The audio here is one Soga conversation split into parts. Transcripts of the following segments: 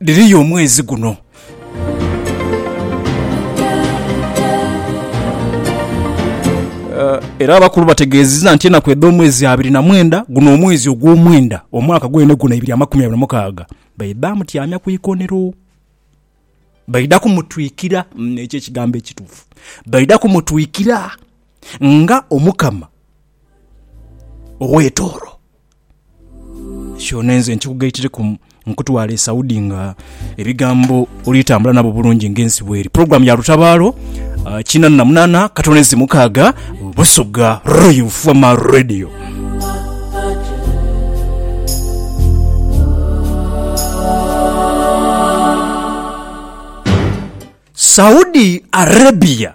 dhiriyo omwezi guno. Era abakulu bategeezizza nti enaku edh'omwezi abiri na mwenda guno omwezi ogw'omwenda omwaka gwene guno ibiri amakumi abiri na mukaaga baidha mutyamya ku ikonero. Baidha kumutwikira, ekyo ekigambo ekituufu, baidha kumutwikira nga Omukama ow'etooro. Kyona inze nkikugaitireku nkutwale e Saudi nga ebigambo oli tambula nabo bulungi nga ensi bweri. Program ya lutabaalo ah, kinana na munana katono ensi mukaaga busoga Royal Fama Radio. Saudi Arabia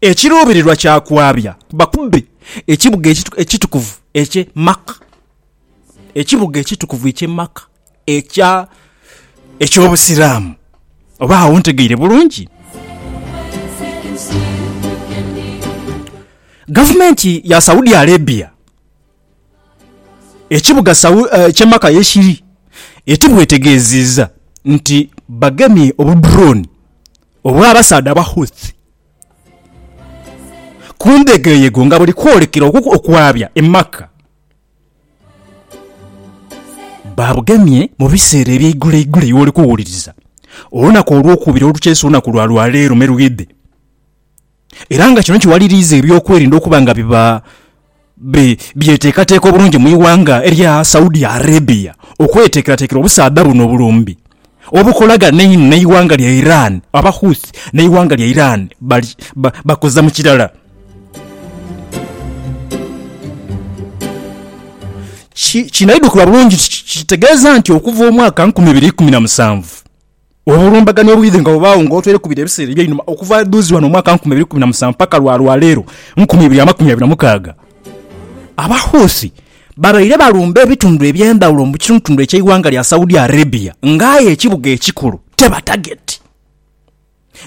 Ekiruubirirwa kya kwabya bakubbe ekibuga ekitukuvu eky'e Makka, ekibuga ekitukuvu eky'e Makka ekya eky'Obusiraamu. Oba agho ontegeire bulungi? Gavumenti ya Saudi Arabia, ekibuga eky'e Makka ye kiri, etibwetegeeziiza nti bagemye obudrooni obw'abasaadha Abahouthi. Ku ndhegeeyego nga buli kwolekera okwo okwabya e Makka, baabugemye mu biseera eby'eiguloigulo eby'oli kuwuliriza olunaku olwokubiri olukyeisa olunaku lwa lwaleero me lwidhe era nga kino kiwaliriiza eby'okwerinda okuba nga biba bi byeteekateeka obulungi mu ighanga erya Saudi Arabia okweteekerateekera obusaadha buno obulumbi obukolagana einho n'eighanga lya Iran. Aba Houthi n'eighanga lya Iran bali bakoza mu kirala. Ki kinaidhukirwa bulungi nti kitegeeza nti okuva omwaka nkumi ibiri ikumi na musanvu, Obulumbagano obwidhi nga bubaagho nga otoire ku bire ebiseera eby'einhuma okuva dhuuzi ghano mu mwaka nkumi ibiri kumi na musanvu paka lwa lwaleero nkumi ibiri amakumi abiri na mukaaga, Abahouthi babaire balumba ebitundu eby'endhawulo mu kitundutundu eky'eighanga lya Saudi Arabia nga aye ekibuga ekikulu teba tageti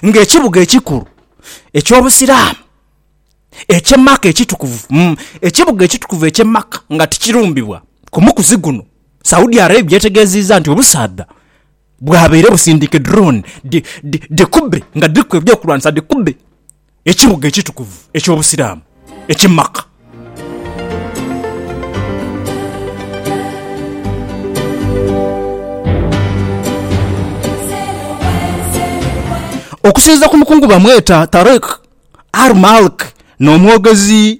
nga ekibuga ekikulu eky'Obusiraamu eky'e Makkah Ekitukuvu. Ekibuga ekitukuvu eky'e Makkah nga tikirumbibwa ku mukuzi guno, Saudi Arabia etegeezizza nti obusaadha, bwabaire busindike drone dhikube nga dhiriku ebyokulwanisa dhikube ekibuga ekitukuvu eky'obusiraamu ekye Makkah. Okusinziira ku mukungu bamweta Tariq Al-Malk n'omwogezi.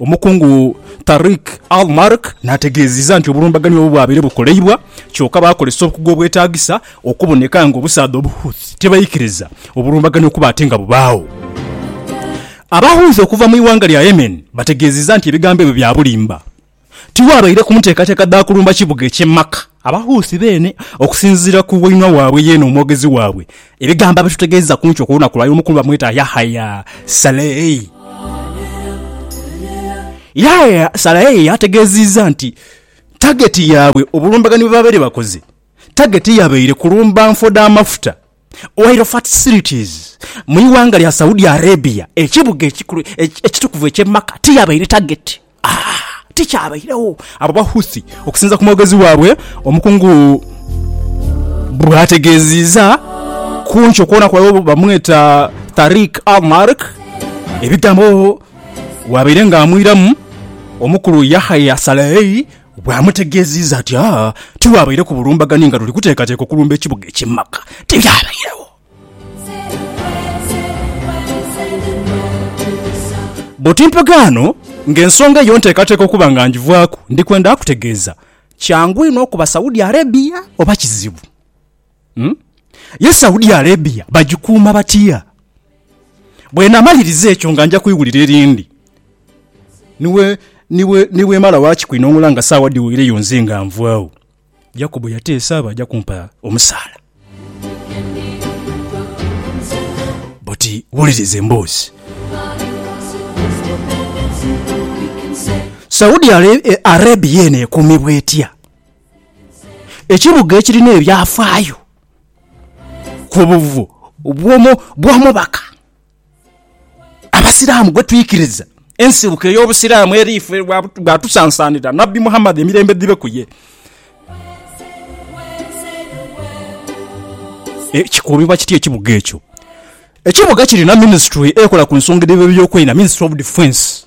Omukungu Tariq Al-Mark n'ategeezizza nti obulumbaganyi obwo bwabaire bukoleibwa kyoka baakozesa obukugu obwetaagisa okuboneka nga obusaadha Obuhouthi tibaikiriza obulumbaganyi okuba ate nga bubaagho. Abahouthi okuva mu ighanga lya Yemen bategeezizza nti ebigambo ebyo bya bulimba. Tiwaabaireku nteekateeka dha kulumba kibuga eky'e Makka. Abahuuthi beene, okusinziira ku wainwa waabwe yeene omwogezi waabwe, ebigambo abitutegeeza ku nkyo ku lunaku lwa yomu, kuno bamweta Yahaya Saleeyi. Yahaya Saleeyi ategeeziiza nti tageti yaabwe obulumbaganyi bwe baabaire bakoze, tageti yabaire kulumba nfo dha mafuta. Oil Facilities, mu ighanga lya Saudi Arabia, ekibuga ekikulu ekitukuvu eky'e Makkah tiyabaire tageti. Tikyabairegho abo ba Houthi, okusinza ku mwogezi waabwe omukungu bw'ategeeziiza ku nkyo kwona kwona oba bamweta Tariq al-Marq ebigambo bwabaire ng'amwiramu omukulu Yahya Salehi Bwamutegeeziiza ati, Aa, tiwaabaireku bulumbaganyi nga luli kuteekateeka okulumba ekibuga eky'emaka. Tibyabairegho. Bw'oti mpagaano, ng'ensonga eyo nteekateeka okuba nga ngivaaku, ndi kwenda kutegeeza, kyangu inho okuba Saudi Arabia oba kizibu? Ye Saudi Arabia bagikuuma batya? Bwenamaliriza ekyo nga nja kwiwulira erindi. Ni bwemala wakikwinong'ola nga saawa dhiweireyo nze nga nvaagho, Yakobo yateesa abo aja kumpa omusaala. Boti, Wuliriza emboozi. Saudi Arabia eno ekuumibwa etya? Ekibuga ekirina ebyafaayo ku buvo bw'omubaka Abasiraamu gwe twikiriza, ensibuko ey'Obusiraamu eri ife bwatusansaanira Nabbi Muhammad, emirembe dhibe ku ye. Kikuumibwa kitya ekibuga ekyo? Ekibuga kirina minisitule ekola ku nsonga edh'ebyokwerinda, Ministry of Defence.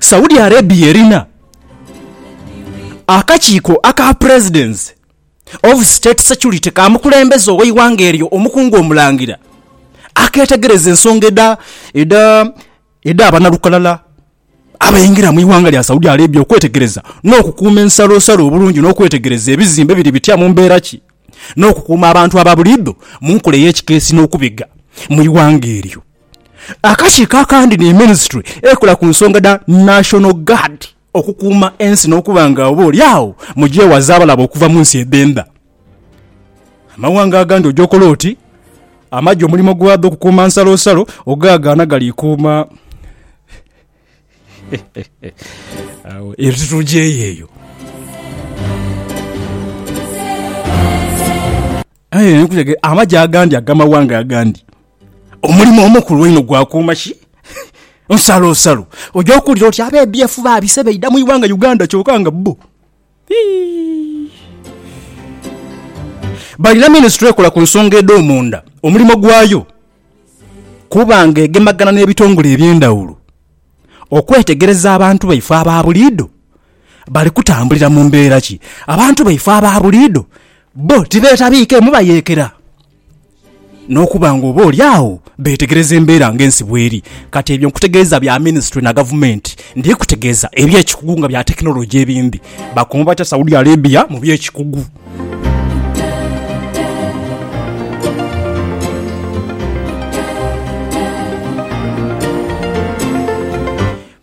Saudi Arabia erina akakiiko aka Presidency of State Security ka mukulembeze ow'eighanga eryo Omukungu Omulangira akeetegereza ensonga edh'abanalukalala abaingira mu ighanga lya Saudi Arabia okwetegereza n'okukuuma ensalosalo obulungi n'okwetegereza ebizimbe biri bitya mu mbeera ki n'okukuuma abantu ababuliidho mu nkola ey'ekikeesi n'okubigha mu ighanga eryo. Akakiiko akandi ni Minisitule ekola ku nsonga dha National Guard okukuuma ensi n'okuba nga oba oli agho mu gyewaza abalabe okuva mu nsi edhenda amawanga agandi oja okola oti amagye omulimo gwadho kukuuma nsalosalo oghagaana galikuuma agho eyo titugyeyo eyo. Aye nkutegere amagye agandi ag'amawanga agandi omulimo omukulu einho gwa kuuma ki? Nsalosalo. Oja okuwulira oti aba ADF baabise baidha mu ighanga Uganda kyoka nga bbo balina minisitule ekola ku nsonga edh'omunda omulimo gwayo kuba ng'egemagana n'ebitongole eby'endhawulo okwetegereza abantu baife aba buliidho bali kutambulira mu mbeera ki? Abantu baife aba buliidho bo tibeetabiikeemu bayeekera n'okuba ng'oboolyawo beetegereza embeera ng'ensi bweri. Kati ebyo nkutegeeza bya minisitule na gavumenti. Ndi kutegeeza eby'ekikugu nga bya tekinologi ebindi. Bakomo batya Saudi Arabia mu by'ekikugu?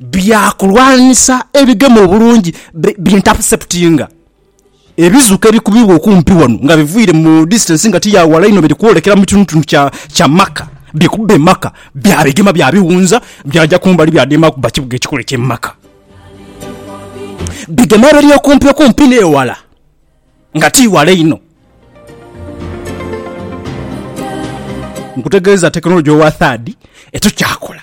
bya kulwanisa ebigema obulungi bi intaseputinga ebizuka ebikubibwa okumpi wano nga biviire mu disitansi nga ti ya wala inho biri kwolekera mu kitundutundu kya maka bikubba emaka bya bigema bya biwunza byaja kumbali bya dema kubba kibuga ekikulu eky'omu maka. Bigema ebiri okumpikumpi n'ewala nga ti wala inho. Nkutegeeza tekinologiya owa thaadi etukyakola.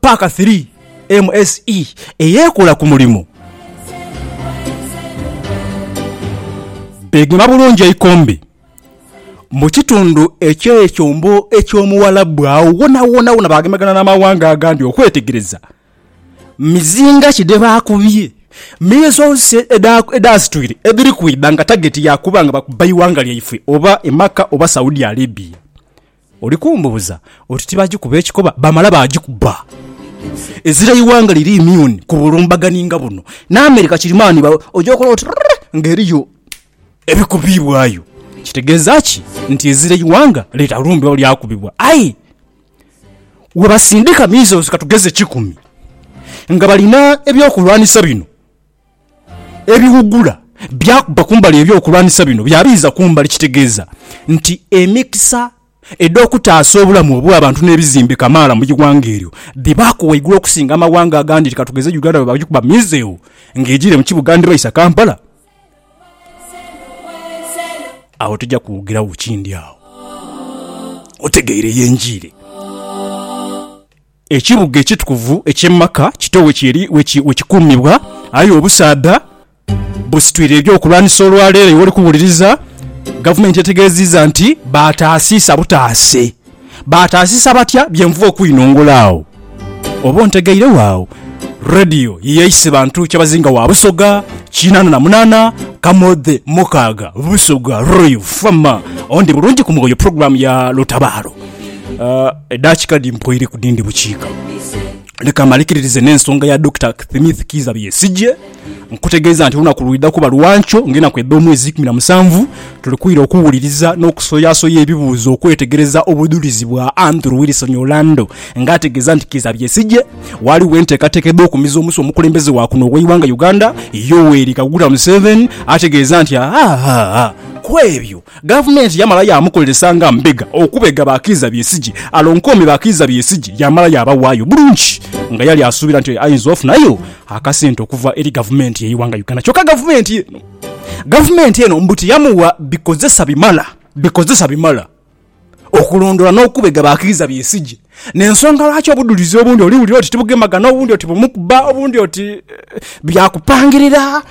Paaka Thirii, MSE, eyekola ku mulimo. Begema bulungi eikombe mu kitundu eky'ekyombo eky'omuwalabu agho ghonawona wona bagemagana n'amawanga agandi okwetegereza mizinga ki dhebaakubye, missiles edhaasitwire edhiri kwidha nga tageti yaakuba nga bakuba ighanga lyaife oba e Makkah oba Saudi Arabia. Oli kumbuuza oti tibagikuba ekikoba? Bamala baagikuba. Ezira eighanga liri immune ku bulumbaganhi nga buno. N'Amerika Kirimani ba, oja okola oti rrrr nga eriyo ebikubiibwayo. Kitegeeza ki? Nti ezira eighanga litalumbibwa oba lyakubibwa. Aye we basindika missiles, ka tugeze kikumi, nga balina eby'okulwanisa bino, Ebiwugula byakuba kumbali eby'okulwanisa bino byabiiza kumbali kitegeeza nti emikisa edh'okutaasa obulamu obw'abantu n'ebizimbe kamaala mu ighanga eryo dhibaaku waigulu okusinga amaghanga agandi katugeze Uganda bwebagikuba miizegho nga ejiire mu kibuga ndhibaisa Kampala. Agho toja kwogeragho kindi agho otegeire yenjiire. Ekibuga ekitukuvu eky'e Makka kito we kikuumibwa, aye obusaadha busitwire ebyokulwanisa olwaleero. Iwe oli kuwuliriza, gavumenti etegeezizza nti baataasiisa butaase. Baataasiisa batya? Bye nva okwinongola agho oba ontegeiregho agho. Radio ye yaise bantu kyabazinga wa Busoga, kinaana na munaana, Kamodhe mukaaga, Busoga, Royal, Fama, Ondi bulungi ku mugoyo, pulogulaamu ya Lutabaalo. Edaakika dhimpoireku dhindi bukiika. Leka maliikiririze n'ensonga ya Dokita Thimith Kiiza Byesigye. Nkutegeeza nti olunaku lwidha kuba lwa nkyo ng'enaku edh'omwezi eikumi na musanvu tuli kwira okuwuliriza n'okusoyasoya ebibuuzo okwetegereza obudhulizi bwa Andrew Wilson Orlando nga ategeeza nti Kiiza Byesigye waaliwo enteekateeka edh'okumiza omusu omukulembeze wa kuno ow'eighanga Uganda Yoweri Kaguta Museveni ategeeza nti aah kw'ebyo Gavumenti yamala yaamukozesa nga mbega okubega ba Kiiza Besigye, alonkoome ba Kiiza Besigye yaamala yaabawaayo bulungi nga yali asuubira nti ayinza ofunayo akasente okuva eri gavumenti y'eighanga Uganda kyokka gavumenti eno gavumenti eno mbu tiyamuwa bikozesa bimala bikozesa bimala. okulondoola n'okubega bakiriza byesigye. N'ensonga lwaki obudhulizi obundi oli wulira oti tibugemagana, obundi oti bumukuba, obundi oti bya kupangirira.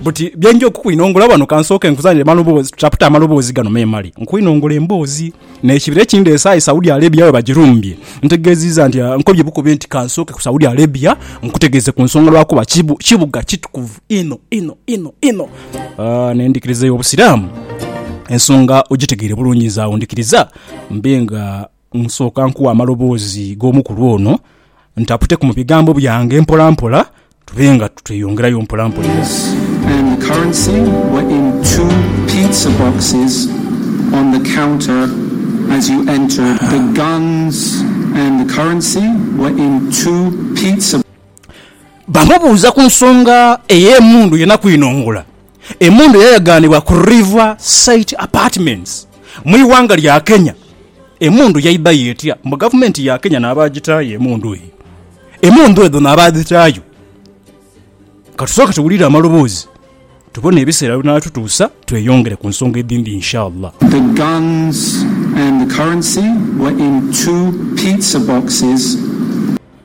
Buti bye nja okukwinongola wano kansooke nkuzanire maloboozi, tutapute amaloboozi gano memale. Nkwinongola emboozi n'ekibira ekindeese aye Saudi Arabia we bagirumbye. Ntegeeziiza nti nkobye bukobi nti kansooke ku Saudi Arabia nkutegeeze ku nsonga lwakuba kibuga kitukuvu inho inho inho inho. ah, n'endhikiriza y'Obusiraamu. Ensonga ogitegeire bulungi nze awo ndhikiriza mbe nga nsooka nkuwa amaloboozi g'omukulu ono ntaputeku mu bigambo byange mpolampola tube nga tweyongerayo mpolampola yes. and the currency were in two pizza boxes on the counter as you entered. The guns and the currency were in two pizza. Bamubuuza ku nsonga ey'emundu yena kwinongula. Emundu yayaganibwa ku River Site Apartments mu ighanga lya Kenya. Emundu yaibayo etya? Mbu gavumenti ya Kenya n'abaagitaayo emundu eyo. Emundu edho n'abaadhitaayo. Katusooke tuwulire amaloboozi tubone ebiseera lwebinaatutuusa tweyongere ku nsonga edhindi Inshallah. The guns and the currency were in two pizza boxes.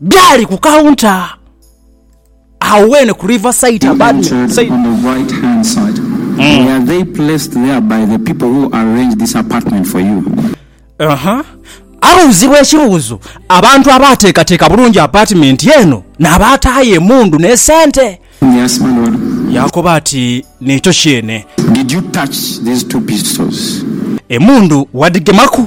Byali ku kawunta agho weene ku Riverside Apartment. Abuuzibwa ekibuuzo abantu abaateekateeka bulungi apatimenti eno n'abaataayo emundu n'esente, yaakoba ati, Niikyo kyene. Emundu wadhigemaku?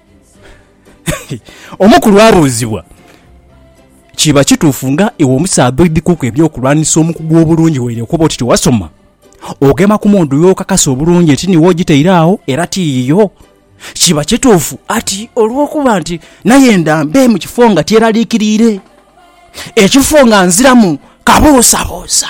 Omukulu abuuzibwa, Kiba kituufu nga iwe omusaadha oidhikuku eby'okulwanisa omukugu obulungi waire okuba oti tiwasoma? Ogema ku mundu y'okakasa obulungi nti niiwe ogitaire agho era ti yiyo? Kiba kituufu ati olw'okuba nti nayenda mbe mu kifo nga kyeraliikiriire, ekifo nga nziramu kabuusabuusa?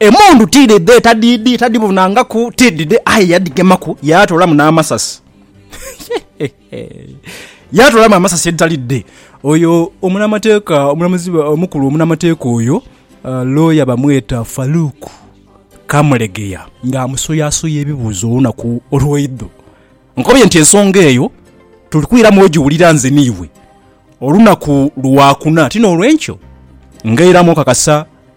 Emundu tidhidhe tadhidhi tadhibunangaku tidhidhe aye yadhigemaku yaatoolamu n'amasasi. Yaatoolamu amasasi edhitalidhe. Oyo omunamateeka omulamuzi ba- omukulu omunamateeka oyo ah, looya bamweta Farouk Kamulegeya ng'amusoyasoya ebibuuzo olunaku olweidho. Nkobye nti ensonga eyo tuli kwiramu ogiwulira nze n'iwe olunaku Lwakuna ti n'olwenkyo ngeiramu okakasa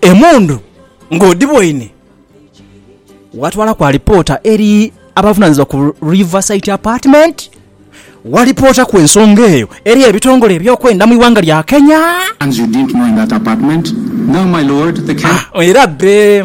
Emundu ng'odhiboine, watwalaku alipoota eri abavunanizibwa ku River Site Apartment, walipootaku ensonga eyo eri ebitongole ebyokwenda mu ighanga lya Kenya. Era be.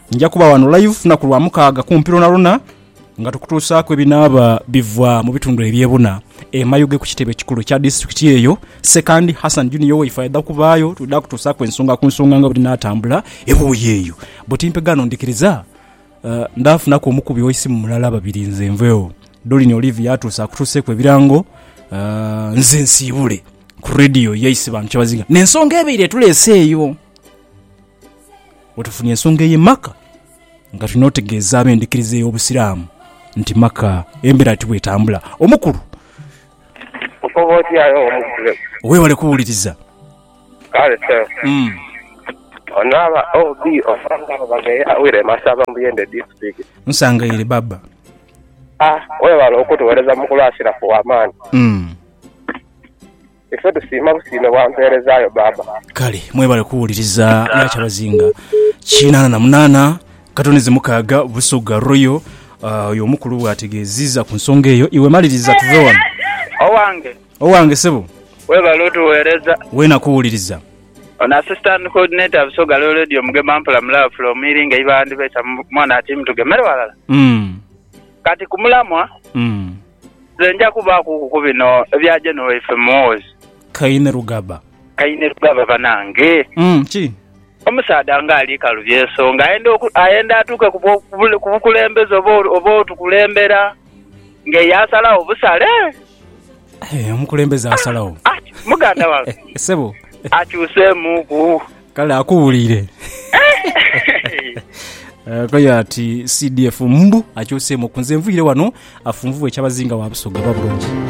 Nja kuba wano live ku lunaku lwa mukaaga kumpi lwonalwona nga tukutuusaaku ebinaaba biva mu bitundu ebyebuna e Mayuge ku kitebe ekikulu ekya disitulikiti eyo. Ssekandi Hassan Junior waife aidha kubaayo twidha kutuusaaku ensonga ku nsonga nga bwedhinaatambula ebuuyi eyo. Bwetimpegaana ondhikiriza? Ndaafunaku omukubi w'eisimu mulala babiri nze nvegho. Doreen Olivia atuuse akutuuseeku ebirango nze nsiibule ku Radio ye Isibantu Kyabazinga n'ensonga ebaire etuleeseeyo. Wetufunye ensonga eye Makka nga tulina otegeeza abendikiriza ey'obusiraamu nti Makka embera ti bwetambula. Omukulu. Okoba otya aye omukulu? Webale kuwuliriza. Kale ssebo. Mm. Ono aba OB osanga abo bageya awire Masaba Mbuyende District. Nsangaire baba. Ah webale okutuwereza mukulu Ashiraf wamaani. Mm. Ife tusiima busiime bwa mpeereza yo, Bbaabba. Kale, mwebale kuwuliriza. Yakyabazinga kinaana na munaana, katonize mukaaga, Busoga Royal. Oyo omukulu bw'ategeeziza ku nsonga eyo. Iwe maliriza tuve wano. Owange. Owange, ssebo. Webale otuweereza. Weena kuwuliriza. Ono Assistant Coordinator, Busoga Royal Radio, Mugema mpola mu love from Iringa ibaandhibeeta mu mwana ati mutugemere walala. Kati ku mulamwa. Nze nja kubaakuku ku bino ebya Gen waife Muhoozi. Kainerugaba. Kainerugaba banange! Umm ki? Omusaadha nga ali kalubya ensonga ayenda ayenda atuuke ku bukulembeze oba oba otukulembera ng'eyo asalagho busale? Hee omukulembeze asalagho? Muganda wange akyuseemuuku. Kale akuwulire. Akaye ati CDF mbu akyuseemu ku nze nviire wano afunvubwe Kyabazinga wa Busoga. Ba bulungi.